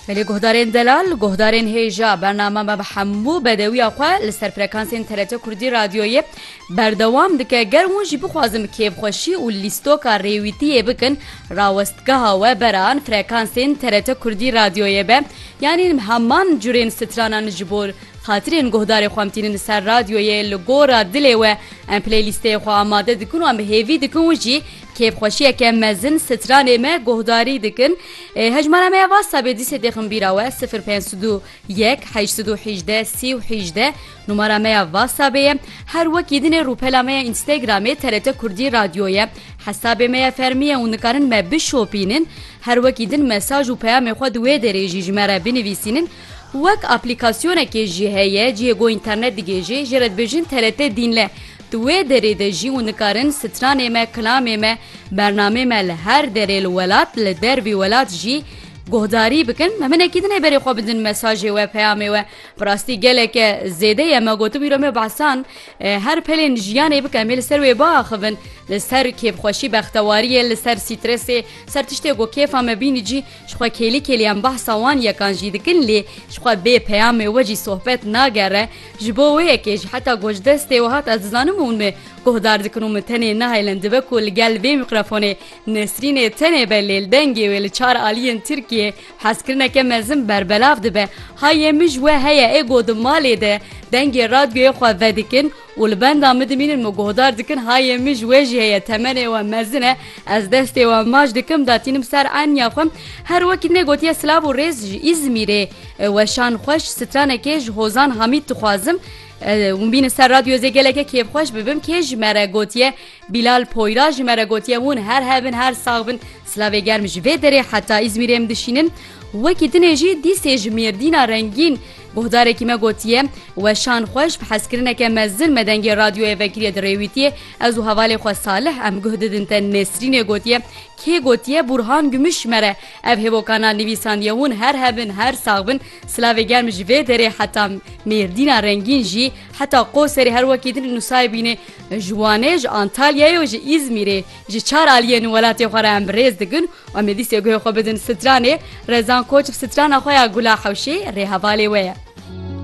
Belê guhdarên delal, guhdarên hêja bername me bi hemû bedewiya xwe li ser frekansên TRT Kurdî Radyoyê berdewam dike. Ger hûn jî bixwazin bi kêfxweşî û lîstoka rêwîtiyê bikin rawestgeha we beran frekansên TRT Kurdî Radyoyê be. Yanî heman curên stranan ji bo xatirên guhdarê xwe em tînin li ser radyoyê li gora dilê we em playlîsteyê xwe amade dikin û em bi hêvî dikin û jî Kêfxweşiyeke mezin stranê me guhdarî dikin. Hejmara me ya WhatsAppê dîsê têxin bîra we sifir pênc sed û yek heşt sed û hîjde sî û hîjde numara me ya WhatsAppê ye. Her wekî din ê rûpela me ya Instagramê TRT Kurdî Radyo ye. Hesabê me ya fermî ye û nikarin me bişopînin. Her wekî din mesaj û peyamê xwe di wê derê jî ji me re binivîsînin. Wek aplîkasyonekê jî heye cihê ku înternet digihêjê jê re dibêjin TRT Dînle. Di wê derê de jî hûn dikarin stranê me, kilamê me, bernameyê me li her derê li welat, li dervî welat jî guhdarî bikin. Me hinekî din ê berê xwe bidin mesajê we, peyamê we. Bi rastî geleke zêde ye. Me gotibi îro me behsan her pelên jiyanê bike. Em ê li ser wê biaxivin. Li ser kêfxweşî, bextewariyê, li ser strêsê, li ser tiştê ku kêfa me bînî cî. Jixwe kêlî kêlî em behsa wan yekan jî dikin lê jixwe bê peyamê we jî sohbet nagere, ji bo wê yekê jî heta ku ji destê we hat ez dizanim hûn min guhdar dikin û min tenê nahêlin dibe ku li gel vê mîqrefonê Nesrînê tenê be lê li dengê wê li çar aliyên Tirkiyê hezkirineke mezin berbelav dibe. Hayê min ji we heye ê ku di malê de dengê radyoyê xwe vedikin Û li benda min dimînin min guhdar dikin hayê min ji wê jî heye temenê we mezin e ez destê we maç dikim datînim ser eniya xwe her wekî nê gotiye silav û rêz ji Îzmîrê weşan xweş stranekê ji Hozan Hamîd dixwazim hûn bînin ser radyo zê geleke kêfxweş bibim kê ji me re gotiye Bîlal Poyra ji me re gotiye hûn her hebin her sax bin silavê germ ji vê derê heta Îzmîrê em dişînin wekî dinê jî dîsê ji Mêrdîna rengîn Guhdarekî me gotiye, Weşan xwe ji bi hezkirineke mezin me dengê radyoyê vekiriye dirêwîtiye, ez û hevalê xwe Salih em guh didin te Nesrînê gotiye, Kê gotiye Bûrhan Gumuş ji me re ev hêvokanan nivîsandiye hûn her hebin her sax bin silavê germ ji vê derê heta Mêrdîna rengîn jî heta Qoserê her wekî din nusayibînê ji Wanê ji Antalyayê û ji Îzmîrê Ji çar aliyên welatê xwe re em bi rêz digin û em ê dîsê guhê xwe bidin Stranê. Rezan Koç bi strana xwe ya Gula Hewşê rê hevalê we ye.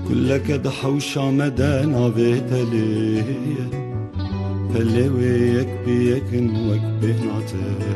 Guleke di hewşa me de navê Pelê ye. Pelê wê yek bi yek in wek bêhnate ye.